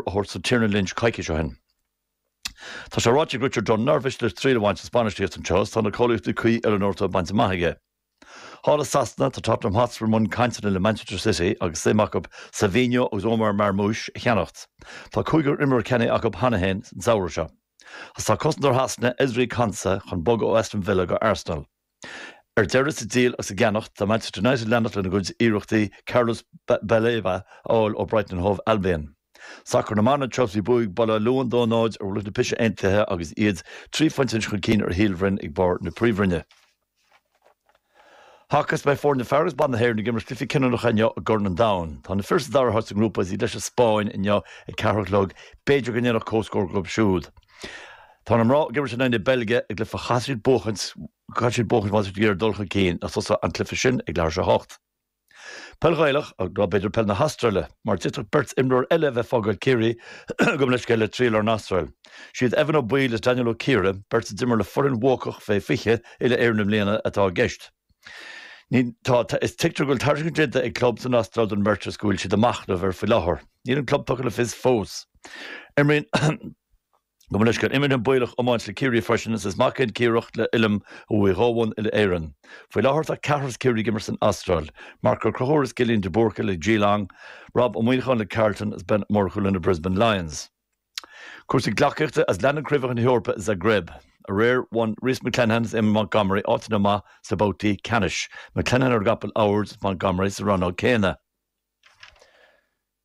a thabhairt do Tiernan Lynch coicís ó shin. Tá sé ráite ag Richard Dunne nár mhiste leis triail a bhaint as bainistíocht anseo is tá na cáilíochtaí cuí oiliúnóra bainte amach aige. Thall i Sasana, tá Tottenham Hotspur i mbun cainteanna le Manchester City agus suim acu Savinho agus Omar Marmoush a cheannacht. Tá cúigear imreoir ceannaithe acu cheana féin an samhradh seo. Is tá cosantóir Shasana, Ezri Konsa, chun bogadh ó Aston Villa go Arsenal. Ar deireadh, sa díol agus sa gceannacht, tá Manchester United ag leanacht lena gcuid iarrachtaí Carlos Baleba a fháil ó Brighton and Hove Albion. Sacar na mban abhus, bhuaigh Baile Átha Luain 2 0 ar Mhullach na Pise Aontaithe agus iad trí phointe anois chun cinn ar Shíol Bhroin ag barr na Príomhroinne. Haca is beidh foirne fear agus ban na hÉireann ag imirt cluichí cinniúnacha inniu i gCorn an Domhain. Tá na fir sa dara háit sa ngrúpa is iad leis an Spáinn inniu ag ceathair a chlog, b'fhéidir go ndéanfadh comhscór dhóibh siúd. Tá na mná ag imirt in aghaidh na Beilge i gcluiche a chaithfidh siad buachaint, caithfidh siad buachaint má tá siad ag iarraidh dul chun cinn is tosóidh an cluiche sin ag leathuair théis a hocht. Peil Ghaelach, nó b'fhéidir peil na hAstráile, mar d'fhéadfadh beirt imreoir eile a bheith ag fágáil Chiarraí, gabh mo leithscéal, le triall ar an Astráil. Siad Evan Ó Baoill is Daniel Ó Ciardha, beirt a d'imir le foireann bhuacach fé 20 uile Éireann i mbliana, atá i gceist. Ní tá, is tuigtear go bhfuil tairiscint déanta ag club san Astráil don mbeirt is go bhfuil siad a' machnamh air faoi láthair. Níl an club tugtha le fios fós. Imríonn. Gabh mo leithscéal, imríonn an Baoilleach iomáint le Ciarraí freisin agus is mac é an Ciardhach le Uilleam a bhuaigh dhá bhonn uile-Éireann. Faoi láthair tá ceathrar as Ciarraí ag imirt san Astráil, Marc Ó Conchúir is Cillian de Búrca le Geelong, Rob Ó Muineacháin le Carlton is Ben Ó Murchú le na Brisbane Lions. Cúrsaí gleacaíochta is leanann craobhacha na hEorpa i Zagreb. Aréir bhain Rhys McClenaghan is Eamonn Montgomery áiteanna amach sna babhtaí ceannais, McClenaghan ar an gcapall ard is Montgomery sa rannóg céanna.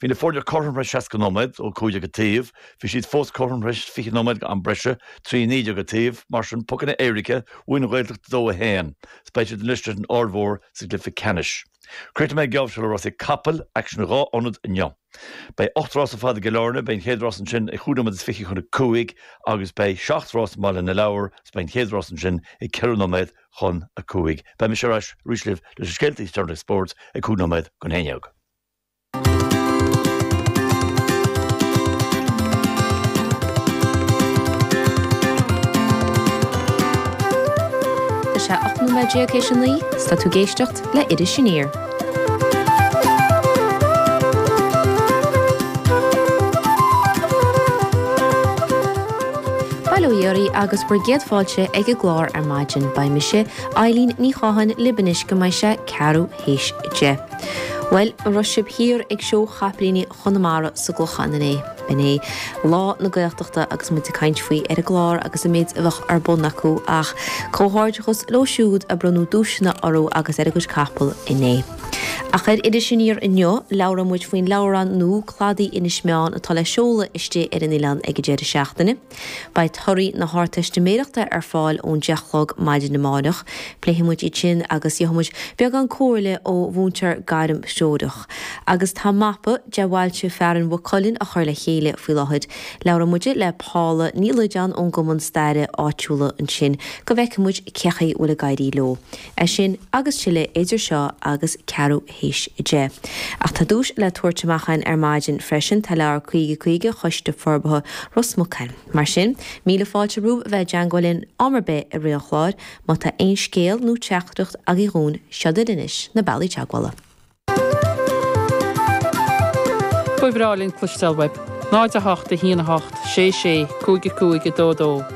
Bhí na foirne cothrom théis 60 nóiméad, 2 15 an taobh, bhí siad fós cothrom théis 20 nóiméad d'am breise, 3 19 an taobh, mar sin pocanna éirice, bhuaigh an Ghaeltacht 2 1. Is beidh siad anois leis an Aird Mhór sa gcluiche ceannais. Críochnóidh mé an geábh seo le rásaí capall, aicsean in dhá ionad inniu. Beidh 8 rás ar fad i gCill Airne, beidh an chéad rás ansin ag 5 nóiméad is 20 chun 5 agus beidh 7 rás i mBaile na Lobhar agus beidh an chéad rás ansin ag 4 nóiméad chun 5. Beidh mise ar ais arís libh leis na scéalta is deireanaí spóirt ag 5 nóiméad chun 11. Tá sé 18 nóiméad tar éis a naoi. Tá tú ag éisteacht le Iris Aniar. Bail ó Dhia oraibh agus bhur gcéad fáilte ag an gclár ar maidin. Beidh mise, Eileen Ní Chatháin, libh anois go mbeidh sé ceathrú théis a deich. Bhuel, an raibh sibh thiar ag Seó Chapaillíní Chonamara sa gClochán inné? B'in é Lá na Gaeltachta agus muid ag caint faoi ar an gclár agus an méid a bheadh ar bun acu ach comhghairdeachas leo siúd a bronnadh duaiseanna orthu agus ar a gcuid capall inné. Ach ar Iris Aniar inniu, labhróidh muid faoin leabhrán nua Cladaí Inis Meáin atá le seoladh istigh ar an oileán ag an deireadh seachtaine. Beidh torthaí na hArdteistiméireachta ar fáil ón 10 a chlog maidin amárach. Pléifidh muid iad sin agus gheobhaidh muid beagán comhairle ó mhúinteoir gairmthreorach. Agus tá mapa de bhailte fearainn Mhaigh Cuilinn á chur le chéile faoi láthair. Labhróidh muid le Paula Ní Loideáin ón gCumann Staire áitiúla ansin go bhfeicfidh muid cén chaoi a bhfuil ag éirí leo. É sin agus tuilleadh idir seo agus ceathrú a théis a deich. Ach tá duais le tabhairt amach againn ar maidin freisin, tá leabhar 'Caoga Caoga' Choiste Forbartha Ros Muc againn. Mar sin, míle fáilte romhaibh a bheith i dteangmháil linn am ar bith i rith an chláir, má tá aon scéal nó teachtaireacht agaibh dhúinn, seo iad anois na bealaí teagmhála. Ba bhreá linn cloisteáil uaibh. 0, 8, 1, 8, 6, 6, 5, 5, 2, 2.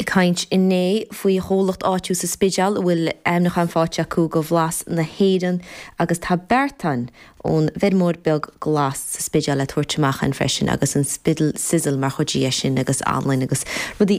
Ag caint inné faoi chomhlacht áitiúil sa Spidéal a bhfuil aimniúchán faighte acu do Bhlas na hÉireann agus tá beartán ón bhfeirmeoir beag glas sa Spidéal le tabhairt amach againn freisin agus an Spiddle Sizzle mar chuid dhe sin agus anlainn agus rudaí